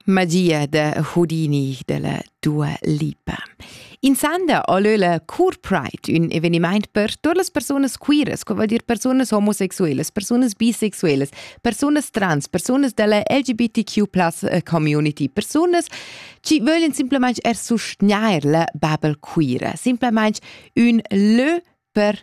Madia da Houdini della Dua Lipa. In sanda olö la Cour Pride, un evenimaint per tuot las persunas queeras, co vuol dir persunas homosexuelas, persunas bisexuelas, persunas trans, persunas della LGBTQ eh, community, persunas ci vöglien simplemente er sustgnair la babel queera, simplemente un lö per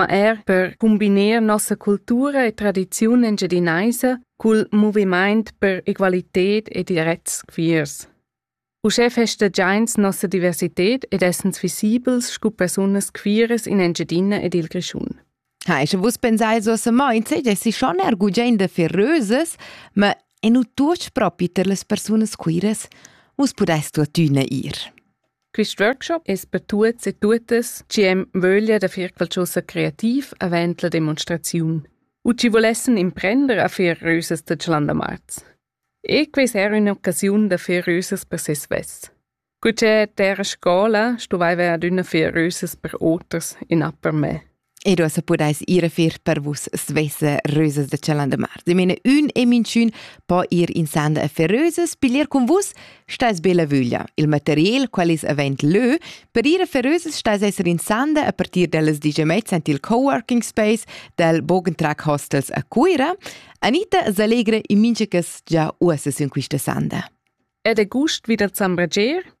ma er per cumbiner nossa cultura e tradiziun engiadinaisa cul movimaint per egualited e direts queers. Uschè festagiains nossa diversited ed essens visibels scu persunas queeras in Engiadina ed il Grischun. Ha, sche vus pensai so se moinze, dessi schon er gugende feröses, ma e nu tuoch propi per les persunas queeras. Vus pudest tuottüna ir. Quist workshop es per tuots e tuottas chi hem vöglia da fer qualchosa creativ avant la demonstraziun u chi volessan imprender a fer rösas da Chalandamarz. E quais era un'occasiun da fer rösas per se svess. Cu che terra scola stuvaiva adüna fer rösas per oters in upper me. ed uossa pudais ir a fer per vus svessa rösas da Chalandemar. De mene ün e minchün po ir in sanda a fer rösas, piglier con vus, stais be la vöglia. Il material qual is avent lö, per ir a fer rösas stais esser in sanda a partir dellas digiamets ant il coworking space del Bogentrack Hostels a Cuira. Anita s'allegra in minchas già uossa sün quista sanda. Ed è gust wieder zambrager?